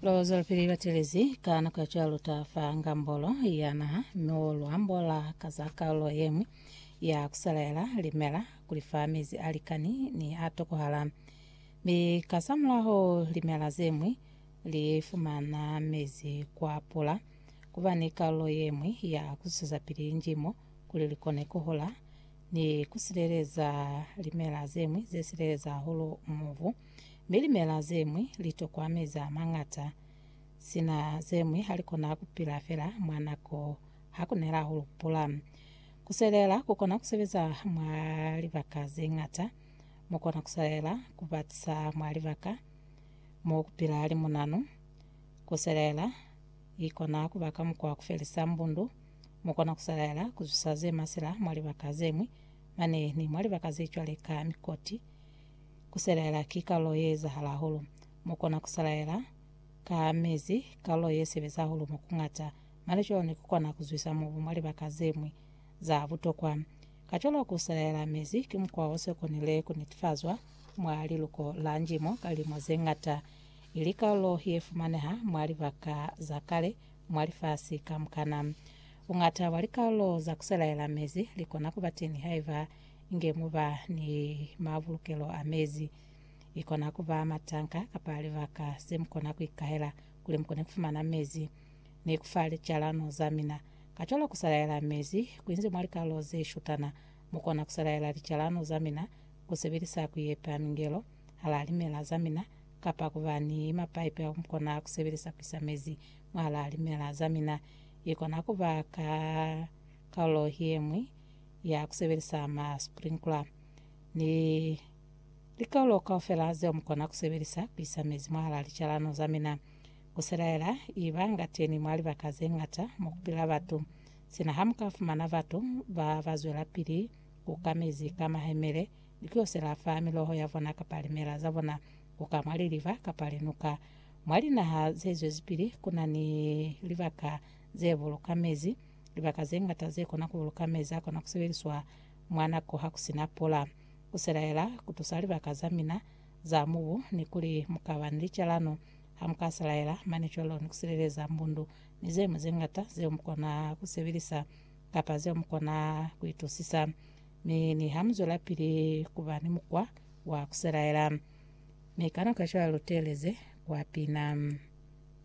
Lo zwelapili ba telezi ka nako ya cwalo ta fa ngambolo ya naha no luambo la ka za kaulo yengwi ya kuselaela limela kuli fa mezi a likani ni a tokohala mi ka sa mulaho limela zengwi li fumana mezi kwa pula kuba ni kaulo yengwi ya kususa pili njimo kuli likone kuhula ni kusileleza limela zengwi zesileleza hulu muvu mi limela zemwi litokwa mezi amañata, sina zemwi halikona kupila fela mwa nako hakunela hulupula. Kuselela kukona kusebeza mwa libaka zeñata, mukona kuselela kubatisa mwa libaka mo kupila limunanu. Kuselela ikona kuba ka mukwa wa kufelisa mbundu, mukona kuselela kuzwisa zemasila mwa libaka zemwi mane ni mwa libaka zecwale ka mikoti, Ku selaela ki kalulo ye ezahala hahulu. Mu kona ku selaela ka mezi, kalulo ye sebeza hahulu mo ku ñata. Mane cwalo ku kona ku zwisa mubu mwa libaka ze ñwi za butokwa. Kacwalo ku selaela mezi ki mukwa o se konile ku netifazwa mwa liluko la njimo ka lilimo ze ñata. I li kalulo ye fumaneha mwa libaka za kale mwa lifasi kamukana. Buñata bwa likalulo za ku selaela mezi li kona ku ba teñi haiba inge mu ba ni mabulukelo a mezi. I kona ku ba matanka kapa libaka ze mu kona ku ikahela kuli mu kone ku fumana mezi. Ni ku fa licalano za mina. Kacwalo ku salaela mezi ku inzi mwa likalolo ze shutana. Mu kona ku salaela licalano za mina ku sebelisa ku yepa mingelo hala limela za mina kapa ku ba ni mapaipi ao mu kona ku sebelisa ku isa mezi mwahala limela za mina. I kona ku ba ka kalulo ye ñwi ya ku sebelisa ma sprinkler ni likaulo kaufela zeo mu kona ku sebelisa ku isa mezi mwahalaa licalano za mina. Ku selaela i ba nga teni mwa libaka ze ñata mo ku pila batu. Sina ha mu ka fumana batu ba ba zwelapili ku ka mezi ka mahemele ni ku yo sela fa miloho ya bona kapa limela za bona ku ka mwa liliba kapa linuka. Mwa linaha ze zwezipili ku na ni libaka ze buluka mezi Libaka ze ñata ze kona ku buluka mezi a kona ku sebeliswa mwa nako ha ku si na pula. Ku selaela ku tusa libaka za mina za mubu ni kuli mu ka ba ni licalano ha mu ka selaela mane cwalo ni ku sileleza mbundu ni ze ñwi ze ñata zeo mu kona ku sebelisa kapa zeo mu kona ku itusisa. Mi niha mu zwelapili ku ba ni mukwa wa ku selaela, mi ka nako ya cwalo lu teeleze kwa pina.